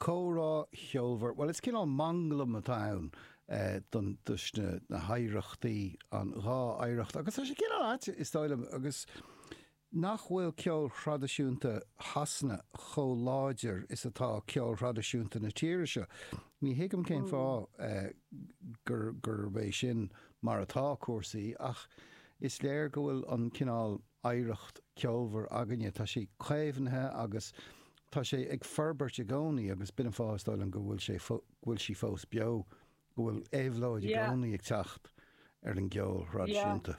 Comhrá ceolmhar, bhuel is cineál manglam atá ann den dá, na na hoidhreachtaí, an dhá oidhreacht agus tá sé cineál ait is dóigh liom agus nach bhfuil ceol thraidisiúnta Shasana chomh láidir is atá ceol thraidisiúnta na tíre seo. Ní thuigim cén fáth gur gurb é sin mar atá cúrsaí ach is léir go bhfuil an cineál, oidhreacht ceolmhar againne. Tá sí caomhnaithe agus tá sé ag forbairt i gcónaí agus b'in an fáth, is dóigh liom, go bhfuil sé fó, go bhfuil sí fós beo, go bhfuil éabhlóid i Yeah. gcónaí ag teacht ar an gceol Yeah. thraidisiúnta.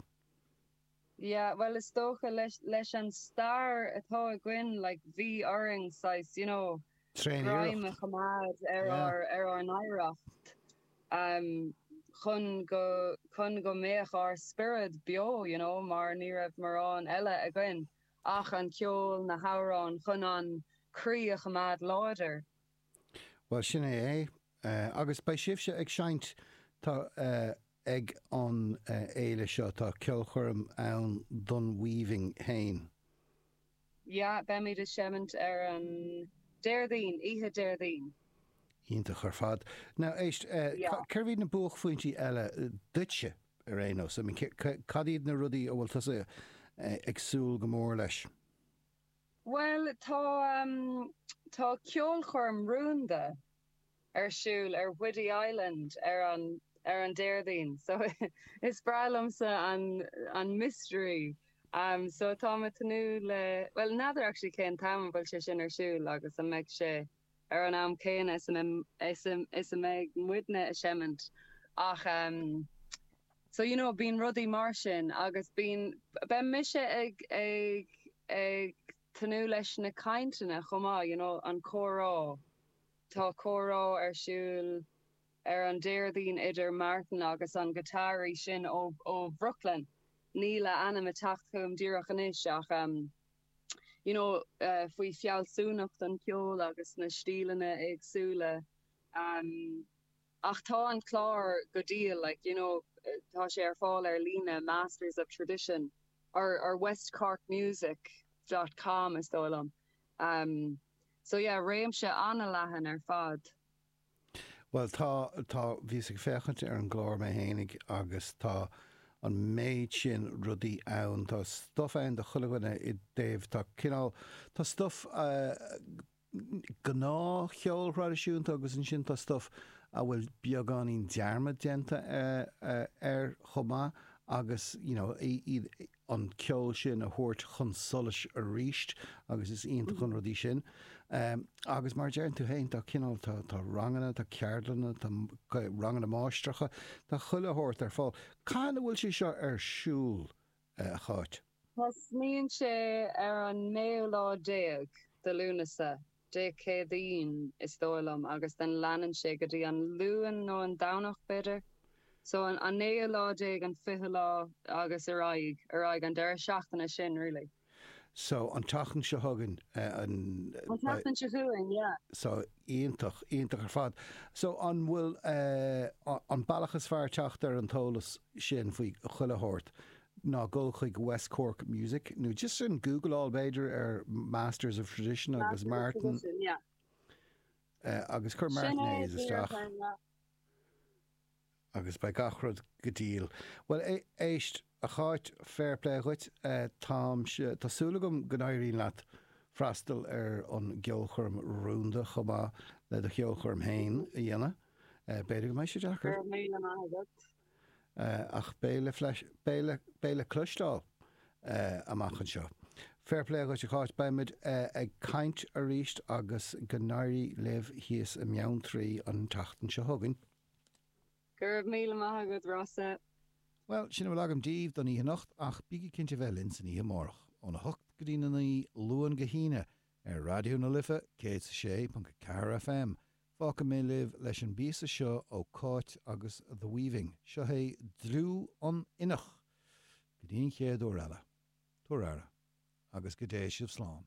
Yeah, bhuel is dócha leis, leis an stair atá againn, like, bhí orainn saghas, you know, greim a choimeád ar Yeah. ár, ar ár n-oidhreacht. chun go, chun go mbeadh ár spiorad beo you know mar ní raibh mórán eile againn ach an ceol, na hamhráin, chun an croí a choimeád láidir. Bhuel sin é é. Agus beidh sibhse ag seinnt, tá, ag an fhéile seo, tá ceolchoirm ann don Weaving ann. Yeah, beimid ag seimint ar an Déardaoin, oíche Déardaoin. Iontach ar fad. Now, éist, Yeah. cérbh iad na buaicphointí eile duitse ar aon nós? I mean, cad iad na rudaí a bhfuil tusa ag súil go mór leis? Bhuel, tá, tá ceolchoirm rúnda ar siúl ar Whiddy Island ar an ar an Déardaoin so is breá liomsa an an mystery umm so táim ag tnúth le bhuel n'fheadar actually cén t-am an bhfuil sé sin ar siúl agus an mbeidh sé ar an am céanna is a mbeidh is a is a mbeidh muidne ag seimint ach umm so you know bíonn rudaí mar sin agus bíonn beidh mise ag ag ag tnúth leis na cainteanna chomh maith you know an comhrá. Tá comhrá ar siúl ar an Déardaoin idir Martin agus an giotáraí sin ó Bhrooklyn, níl a ainm ag teacht chugam díreach anois ach em. you know, faoi fealsúnacht an cheoil agus na stíleanna éagsúla em. Ach tá an clár go diail like, you know, tá sé ar fáil ar líne, Masters of Tradition or, or West Cork Music dot com is dóigh liom. Em. So yeah, réimse an-leathan ar fad. Bhuel tá, tá, bhíos ag féachaint ar an gclár mé fhéinig agus tá an méid sin rudaí ann, tá stuff ann do chuile dhuine i dtaobh, tá cineál, tá stuff gnáthcheol thraidisiúnta agus ansin tá stuff a bhfuil beagáinín dearmad déanta air chomh maith agus you know, iad, an ceol sin a thabhairt chun solais arís agus is iontach an rudaí sin. Agus mar a deireann tú féin tá cineál, tá, tá ranganna, tá ceardlanna, tá ranganna máistreacha, tá chuile shórt ar fáil. Cathain a bhfuil sé seo ar siúl, a Cháit? Tosnaíonn sé ar an naoú lá déag de Lúnasa. Dé Céadaoin, is dóigh liom, agus then leanann sé go dtí an Luan nó an Domhnach, b'fhéidir. So an an naoú lá déag, an fichiú lá agus ar aghaidh, ar aghaidh, an deireadh seachtaine sin really. So an tseachtain seo chugainn, an. An tseachtain seo chugainn, yeah. So iontach, iontach ar fad. So an bhfuil, é an bealach is fearr teacht ar an t-eolas sin faoi chuile shórt Ná gabh chuig West Cork Music, nó just Googleáil b'fhéidir ar Masters of Tradition agus Martin, agus cuir Martin Hayes isteach agus beidh gach rud go diail. Bhuel, éist, a Cháit, fair play dhuit. Táimse, tá súil agam go n-éiríonn leat freastal ar an gceolchoirm rúnda chomh maith le do cheolchoirm fhéin a dhéanamh. B'fhéidir go mbeidh sé deacair. Go raibh míle maith agat. ach beidh le cloisteáil amach anseo. Fair play dhuit a Cháit, beimid ag caint arís agus go n-éirí libh thíos i mBeanntraí an tseachtain seo chugainn. Go raibh míle maith agat Rossa. Bhuel, sin a bhfuil agam díbh don oíche anocht ach bígí cinnte bheith linn san oíche amárach, óna hocht go dtína naoi, Luan go hAoine, ar Raidió na Life 106.4 FM, Fágfaidh mé libh leis an bpíosa seo ó Cáit agus The Weaving. Seo é Dlúth an Innigh! Go dtí an chéad uair eile. Tabhair aire. Agus go dté sibh slán.